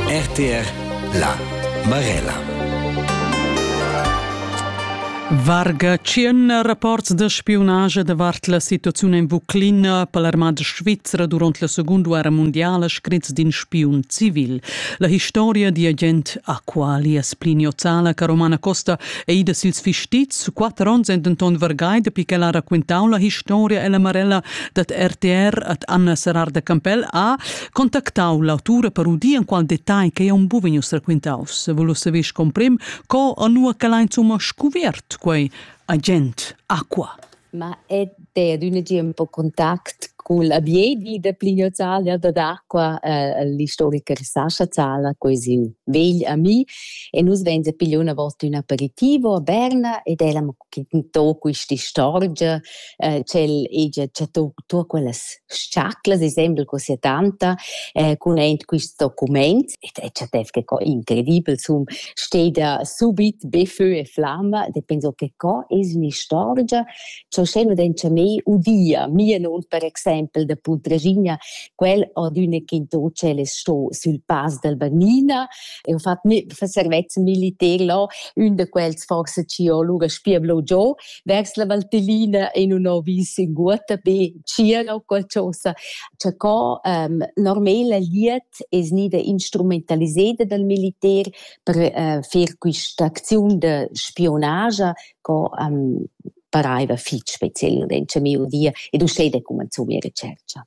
RTR La Marella Varga tschien rapports da spiunage davart la situaziun en Vuclina per l'armada svizra durant la Segunda Guerra Mondiala scrits d'in spiun civil. La historia di agent Aqualias Pliniozala che Romana Costa è ida sils fistits su quatter onns en denton vargai dapi che ha racquintau la historia e la Marella dat RTR ad Anna Serrar de Campell a contactau l'autura per udir en qual detagl che un bu vegnius raquintaus, volus saver comprim co a nua che l'ha insomma scuvert quei agent Aqua. Ma è de d'un tiempo contact col abiedi de Plinio Zalia da d'acqua eh, l'istoriker Sascha Zala, così vegl a mi, e nus venze pigliò una volta un aperitivo a Berna ed eravamo chi tò quist'istorgia, eh ch'el hegia chattà tuot quellas s-chaclas, i sembel co sia tanta, eh cun aint quist documaint ed el chattess che co incredibel, sun steda subit be fö e flamma ed penso che co es ün'istorgia cha usché nu dencha mei udia, mia non per exaimpel da Puntraschigna, quel ad üna che in tò tschel es sto sül Pass dal Bannina, e ho fat mê servezzan militer là, ün da quels forse ci ho lura spieblo giò vers la Valtellina e nun ho vis in guota be tgira o qualchosa. Cha co um, normela liet es gnida instrumentaliseda dal militer per uh, fer quista acziun da spionagia co um, paraiva fich speciel in miu via ed uschè da cumanzò mia recercha.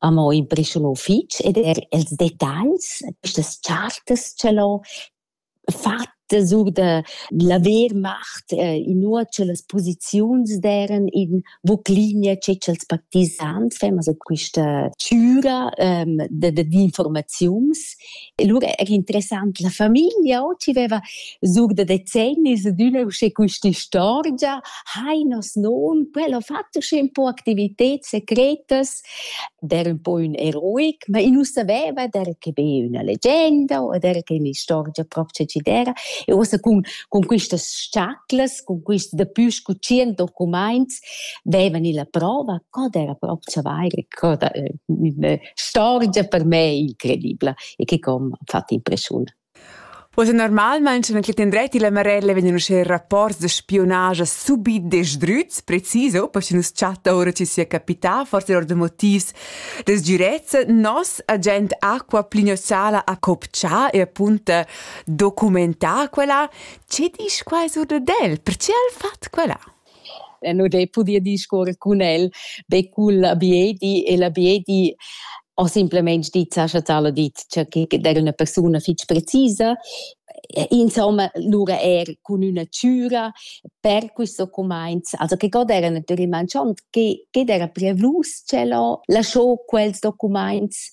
amo imprescha lo fich ed eir ils detagls, quistas chartas cha l'ho fatta sur da laver mart, inua cha las posiziuns d'eiran in Vuclinia che cha'ls partisans fan, also quista chüra da da d'informaziuns. E lura era interessant la famiglia ho chi veva sur da decennis adüna usché quist'istorgia, hai nos non, quel ho fatto usché un po' activited secretas der ün po ün eroic, ma i nu saveva der che be üna legenda o der che ün'istorgia propcha chi d'eira. E uossa cun cun quistas s-chaclas, cun quist dapü scu tschient documaints veivan illa prova co d'eira propcha vaira, co da ün'istorgia per me incredibla e che com ha fat impreschiun. Ussa normalmein sche quel tendrett illa Marella vegnan uschè rapports da spiunage subit desdrüts, precis oh, per chi nu's chatta oura chi sia capità, forse or da motivs da sgürezza, nos agent Aqua Plinio Sala ha copchà e appunta documentà quella. Che disch quai sur dad el? Perche al fat quella? E nu d'he pudü discuorrer cun el be cul abiedi e l'abiedi ho simpelmaing dit, Sascha Zala dit, cha que d'eira üna persuna fich precisa. Insomma, lura eir cun üna chüra per questo cumainz. Also che god eira natüralmaing schon, che d'eira preavlus ch'el ho lascho quels documaints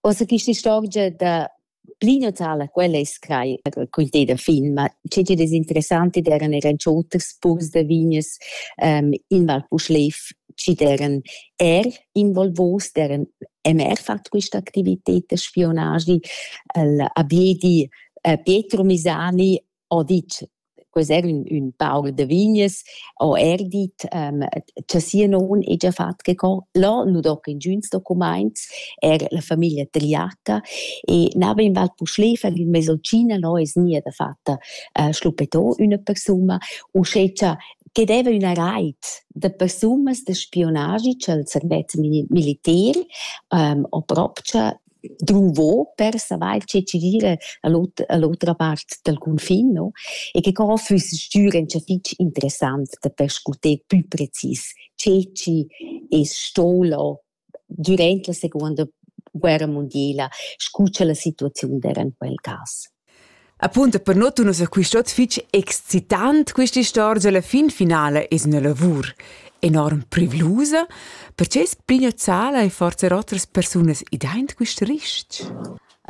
Ossa quista istorgia da pli natala, quella es crai quinteda fin, ma che chi'd es interessant id eran eran cho oters purs da vignas ehm in Val Puschlev chi'd eran eir involvos, d'eran emer fat quista activited da spionagi, il Abiedi Pietro Misani ho dit ques'er ün, ün paur da vignes, ho er dit ähm, cha sia non hegia fat che co. Là nu do che ingüns documaints, er la famiglia tagliata e n'ava in val Puschlefer in mesolcina là es nia da fatta äh, schluppetò üna persuna, uschè cha che deva üna rait da persunas da spionagi cha'l servet militer ähm, ho propcha druvo per savair che tgi gira a l'otra a l'otra part dal cunfin no e che co füss stür ün fich interessant da perscuter pü precis che tgi es stolo dürant la seconda guerra mundiela scu cha la situaziun d'era in quel cas. Apunta per nuot nus ha quist ot fich excitant quista istorgia. La fin finala es üna lavur enorm privlusa. Perche es Plinio Zala e forsa otras persunas idaint quist ris-ch?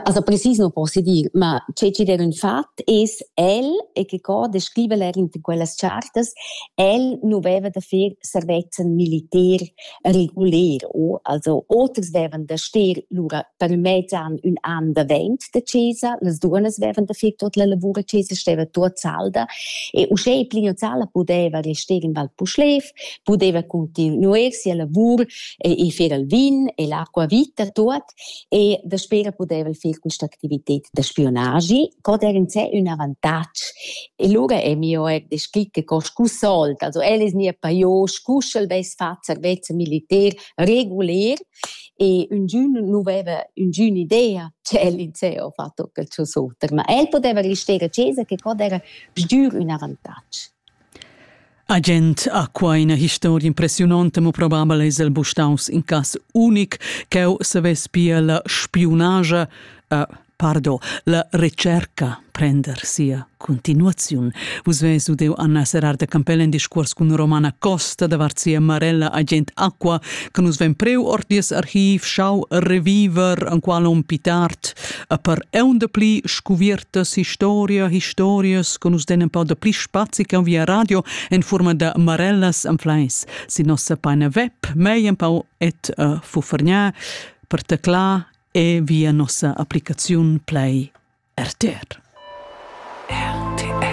Also precis non posso dir, ma che ci der un fat es el e che co descriva er in quellas chartas, el nu veva da fer servezzan militer, reguler o also oters vevan da stir lura per mezzan ün an davent da chesa las duonas vevan da far tot la lavur a chesa steva tuot salda e uschè Plino Zala pudeva restar in Val Puschlev pudeva continuer sia lavur e, e fer il vin e l'acqua vita tuot e daspö ch'el pudeva fer quist'activited da spiunagi cot eir in sé ün avantatg. E lura è mio eir descrit che co scu sold, also el es gnir pajò scu sch'el vess fat servezza militer reguler e üngün nu veva üngün'idea che el in sé ho fatto quel suo suoter, ma el poteva rester a chesa che cot eira sgür ün avantatg. Agent ha quai ina historia impressiunonta, mo probabel es el buc staus in cass unic ch'eu savess pia la spiunagia, uh, pardon, la recerca prender sia continuaziun. Vus ves udeu Anna Serrar de Campell in discuors cun Romana Costa davart sia marella agent Aqua, che nus ven preu ord dies archiv, schau reviver, en qual on pitart a per eunda pli scuviertas historia, historias che nus den un po da pli spazi che via radio en forma da marellas en fleis. Si nossa paina web, mei un po et uh, fufergnà per tecla e via nossa applicazione play RTR. RTR.